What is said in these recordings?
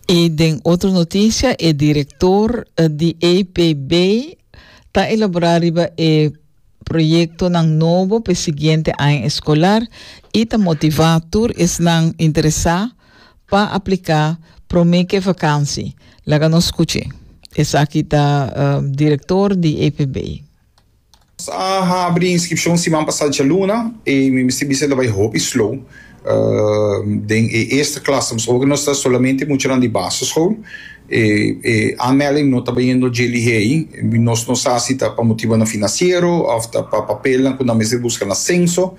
I den otro noticia e director di APB ta elabora riba e proyectonan nobo p'e siguiente aña escolar i ta motiva tur esnan interesa pa aplica prome k'e vakansi. Laga nos scuchi. Esaki ta director di APB. Nos a habri inskripshon siman pasá djaluna i mi mester bisa ta bai hopi slow. Den e eerste klasse nos oga nos ta solamente muchanan di basischool e e aanmelding no ta bayendo dje lihei. Nos no sa si ta pa motibonan financiero òf ta pa papelnan ku nan mester buska na senso.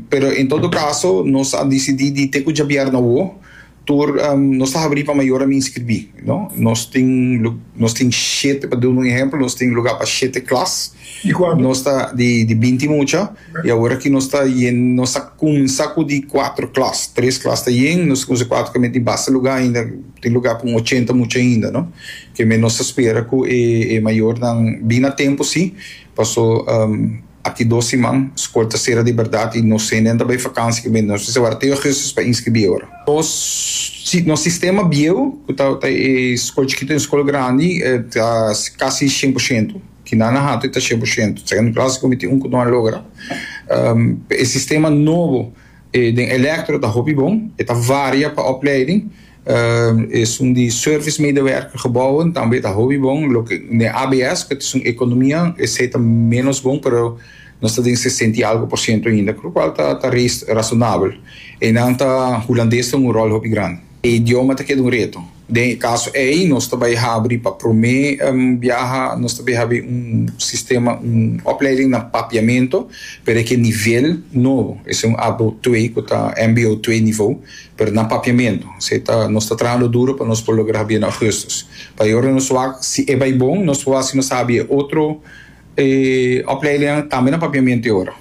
Pero en todo kaso nos a disidí di te ku djabièrnu awo Tur nos ta habrí pa mayornan mi inskribí. Nos tin nos tin shete, pa duna un ehèmpel, nos tin lugá pa shete klas. Di kuantu? Nos ta di di binti mucha i awor aki nos ta yen nos ta kuminsá ku di kuatru klas. Tres klas ta yen, nos ta kuminsá ku kuatru kos tin basta lugá ainda, tin lugá pa un ochenta mucha ainda, no. Kemey nos ta spera ku e e mayornan bini a tempu sí, paso. Aki dos siman, skol ta sera di bèrdat i nos senen ta bai fakansi ku mi. Nos mester wak teo Augustus pa inskribí ora. Nos nos sistema bieu, ku ta ta e skol chikitu en skol grandi, ta kasi shen por shento. Kina nan hatu e ta shen por shento. Segundo klase komo mi tin un ku no a logra. E sistema nobo den Elektro ta hopi bon. E ta varia pa opleiding. Esun di service medewerker gebouwen tambe ta hopi bon. Loke den ABS ku ta esun ekonomia esei ta menos bon pero nos ta den sesenta i algu por siento ainda ku lo kual ta razonabel. Einan ta hulandes ta un ròl hopi grandi. E idioma ta keda un reto. Den e kaso ei nos ta bai habri pa promé biaha nos ta bai habri un sistema un opleiding na papiamento pero e ke nivel nobo esei un abo twee ku ta MBO twee nivo. Pero na papiamentu. Esei ta, nos ta trahando duro pa nos por logra habia na Augustus. Pa e ora nos wak, si e bai bon, nos por hasi nos habia e otro opleidingnan tambe na papiamentu e ora.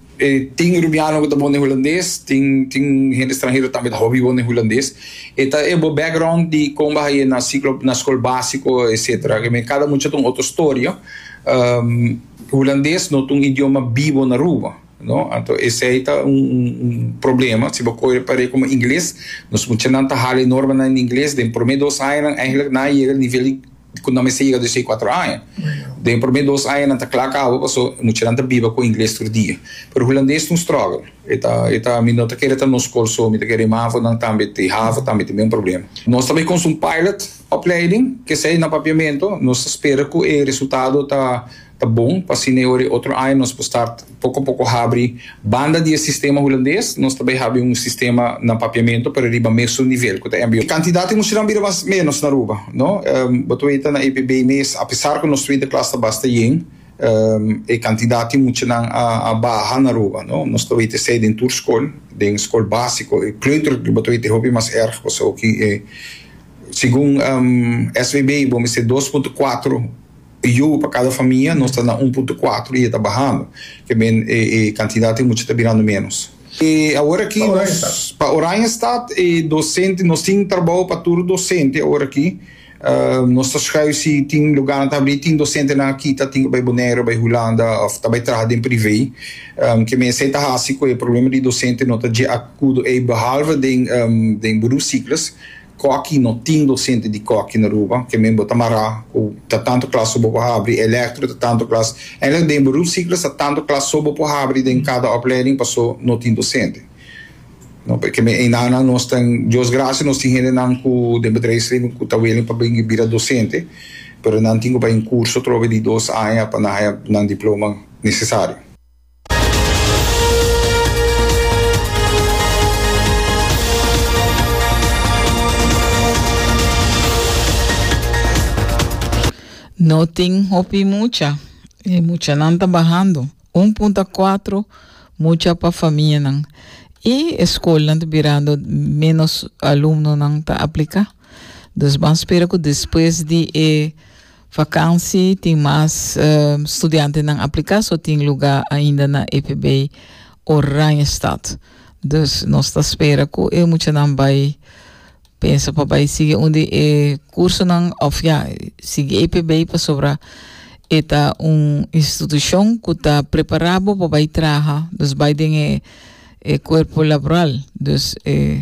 Tin rubiano ku ta bon den hulandes, tin tin hende stranhero tambe ta hopi bon den hulandes. E ta e bo background di kon bo a haña na siklo na skol básiko etsetera. Ke men kada mucha ta un otro storia. Hulandes no ta un idioma bibo na Aruba. No, anto esei ta un un problema. Si bo koe e par'é komo ingles, nos muchanan ta hala e normanan den ingles. Den promé dos añanan eigenlik nan a yega e nivel ku nan mester yega dos'ei kuater aña. Den e promé dos aña nan ta kla kaba paso muchanan ta biba ku ingles tur dia. Pero hulandes ta un struggle. E ta e ta mi no ta kere ta nos kol so, mi ta kere e mavonan tambe te havo tambe te men problema. Nos ta bai konsa un pilot opleiding, k'esei na papiamentu. Nos ta spera ku e resultado ta. Ta bon pa asina e ora e otro aña nos por start poko poko habri banda di e sistema hulandes, nos ta bay habi un sistema na papiamento pero riba mesun nivel cu ta mbo. Cantidad di muchanan bira mas menos na Aruba, no. Bo ta weta na EPB mes a pesar cu nos twinter klas ta basta yen, e cantidad di muchanan a baha na Aruba, no. Nos ta weta esey den tur scol, den scol basico, e kleuter bo ta weta e hopi mas erg pasobra cu e segun SVB bo mester dos punto cuatro E yobo pa cada famia nos ta na un punto cuatro y e ta bahando. Kebien e e cantidad di mucha ta birando menos. E awor aki nos pa Oranjestad e docente nos tin trabao pa tur docente awor aki. Nos ta schuif si tin lugarnan ta habri. Tin docentenan aki ta tin cu bay Bonaire, bay Hulanda of ta bay traha den prive. Kebien esai ta haci cu e problema di docente no ta dje acudo ey behalve den den Boerue Cyclus. Koki no tin dosente di koki na Aruba, ke men bo ta mará ku ta tantu klas so bo por habri, elektro ta tantu klas. Eindelijk den beroep ciclus ta tantu klas so bo por habri den kada oplèding paso no tin dosente. No por ke men einanan nos tan Dios gracia nos tin hendenan ku den bedrijfsleven ku ta willing pa bini bira dosente pero nan tin ku bai un kurso atrobe di dos aña pa nan haya nan diploma nesesario. No tin hopi mucha. E muchanan ta bahando. Un punta cuatro mucha pa famianan. Y e scolnan ta birando menos alumnonan ta aplica. Dus ban spera cu despues di e Vakansi tin mas studiantenan apliká, so tin lugá ainda na EPB Oranjestad. Dus nos ta spera ku e muchanan bai pensa pa bai sigui un di e kursonan òf ya sigui EPB pasobra e ta un institushon ku ta prepará bo pa bai traha, dus bai den e kuerpo laboral. Dus e.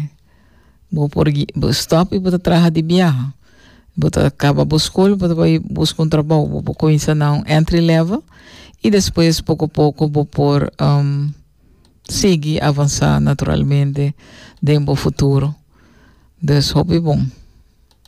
Bo por stop y bo ta traha di biaha. Bo ta caba bo school bo ta bay busca un trabao bo por cuinsa na un entry level y despues poco poco bo por sigui avansa naturalmente den bo futuro. Dus hopi bon.